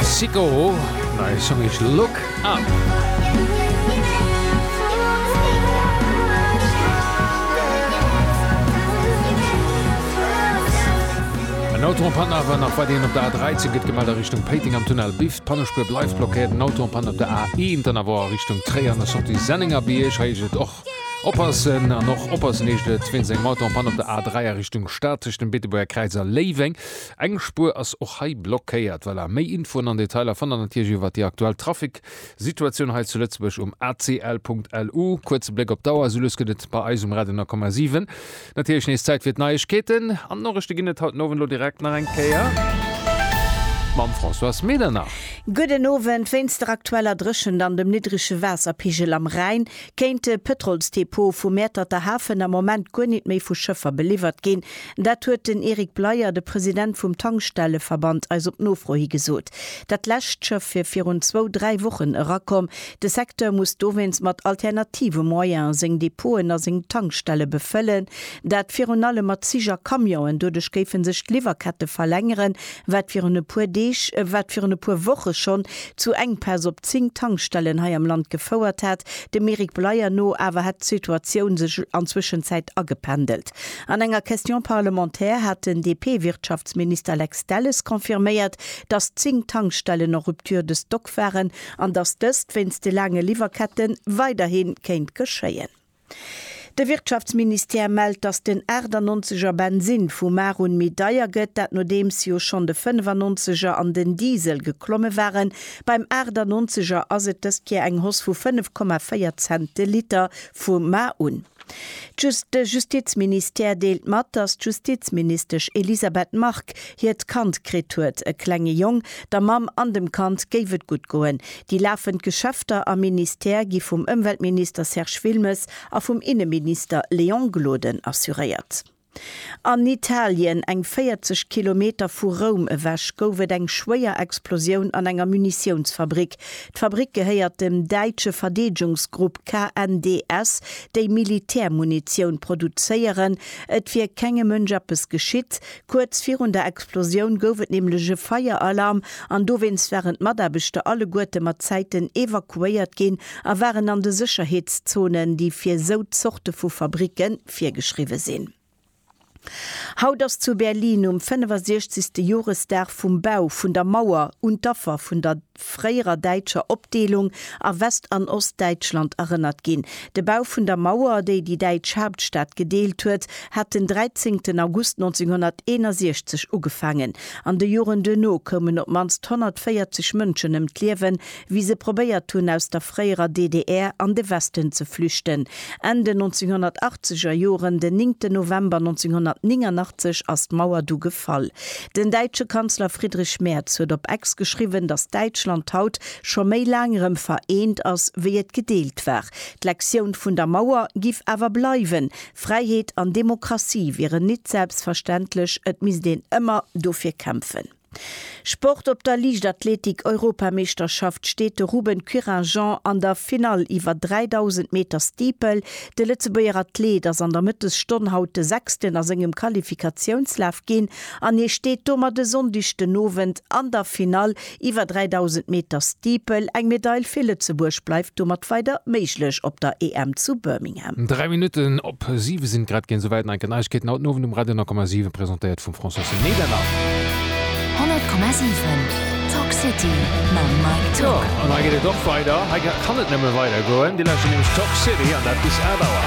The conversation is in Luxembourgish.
Sicko, neie Song heescht Look Up. En Auto en Panne awer nach weiderhin op der A13, gëtt gemellt a Richtung Péiteng am Tunnel Biff. D'Pannespuer bleift blockéiert. En Auto en Panne op der A1, dann awer a Richtung Tréier an der Sortie Sennengerbierg. Hei heescht et och oppassen an och oppassen heescht et wéinst engem Auto en Panne op der A3 a Richtung Stad tëscht dem Beetebuerger Kräiz a Léiweng. Eng Spuer ass och hei blockéiert. Voilà, méi Infoen an Detailer fannt der natierlech iwwert déi aktuell Trafic-Situatioun hei zu Lëtzebuerg um acl.lu. Kuerze Bléck op d'Auer, Soulues gëtt et bei eis um Radio 9,7 natierlech nees Zäit fir d'Neiegkeeten. An d'Noriichte ginn et haut den Owend elo direkt nach eng Kéier mam Françoise Medernach. Gudden Owend, Wéinst der aktueller Dréchent an dem niddrege Waasserpigel am Rhäin kéinte Pëtrolsdepot vu Mäerterter Hafen am Moment guer nit méi vu Schëffer beliwwert ginn. Dat huet den Eric Bleyer, de President vum Tankstelleverband, eis op Nofro hi gesot. Dat lescht Schëff wier virun zwou, dräi Wochen erakomm. De Secteur muss dowéinst mat alternative Moyene seng Depoten a seng Tankstelle befëllen. Dat virun allem mat Zich a Camionen. Doduerch géife sech d'Liwwerkette verlängeren, wat virun e puer Deeg, wat virun e puer Woche schonn zu Enkpäss op zéng Tankstellen hei am Land gefouert hat. Dem Eric Bleyer no awer hätt d'Situatioun sech an Zwëschenzäit agependelt. An enger Question parlementaire hat den DP-Wirtschaftsminister Lex Delles confirméiert, datt 10 Tankstellen en rupture de stock waren an datt dëst wéinst de laange Liwwerkette weiderhi kéint geschéien. De Wirtschaftsministère mellt, datt den 98 er Bensinn vu mar un méi deier gëtt, dat nodeems jo schonn de 95 er an den Diesel geklomme waren. Beim 98 er ass et dëst Kéier eng Hoss vu 5,4 Cent de Liter vu mar un. Just de Justizministère deelt mat, datt d'Justizministesch Elisabeth Margue hiert Kand kritt huet. E klenge Jong. Der Mamm an dem Kand géif et gutt goen. Déi lafend Geschäfter am Ministère gi vum Ëmweltminister Serge Wilmes a vum Inneminister Léon Gloden assuréiert. An Italien, eng 40 Kilometer vu Roum ewech, gouf et eng schwéier Explosioun an enger Munitiounsfabrick. D'Fabrick gehéiert dem däitsche Verdeedgungsgrupp KNDS, déi Militärmunitioun produzéieren. Et wier kengem Mënsch eppes geschitt. Kuerz virun der Explosioun gouf et nämlech e Feieralarm an dowéinst waren d'Mataarbechter alleguerte mat Zäiten evakuéiert ginn a waren an de Sécherheetszonen, déi fir esou Zorte vu Fabricke virgeschriwwe sinn. Haut ass zu Berlin um 65. Joresdag vum Bau vun der Mauer un d'Affer vun der fréierer däitscher Opdeelung a West an Ostdäitschland erënnert ginn. De Bau vun der Mauer, déi déi däitsch Haaptstad gedeelt huet, hat den 13 August 1961 ugefaangen. An de Joren duerno koumen op d'mannst 140 Mënschen ëm d'Liewen, wéi se probéiert hunn aus der fréierer DDR an de Westen ze flüchten, Enn den 1980 er Joren, den 9 ten November 1989 ass d'Mauer du gefall. Den däitsche Kanzler Friedrich Merz huet op Ex geschriwwen, datt Däitschland haut scho méi laang erëm vereent ass, wéi et gedeelt war. D'Lektioun vun der Mauer giff awer bleiwen, Fräiheet an Demokratie wieren nit selbstverständlech, et misst een ëmmer dofir kämpfen. Sport Op der Liichtathletik-Europameeschterschaft steet de Ruben Quirajean an der Finall iwwer 3.000 Meter Steeple. De Lëtzebuerger Athleet ass an der Mëttesstonn haut de Sechsten a sengem Qualifikatiounslaf ginn an hie steet domat e Sonndeg den Owend an der Finall iwwer 3.000 Meter Steeple. Eng Medail fir Lëtzebuerg bleift domat weider méiglech op der EM zu Birmingham. Biergermeeschterskandidaten. Dräi Minutten op siwe sinn et grad ginn. Souwäit Neiken Neiegkeeten haut den Owend um Radio 10,7, presentéiert vum Françoise Medernach. 100,7 Talk City mam Mike Tück. An hei geet et och weider, hei kann et nëmme weider goen. Dir lauschtert nämlech Talk City an dat bis 11 Auer.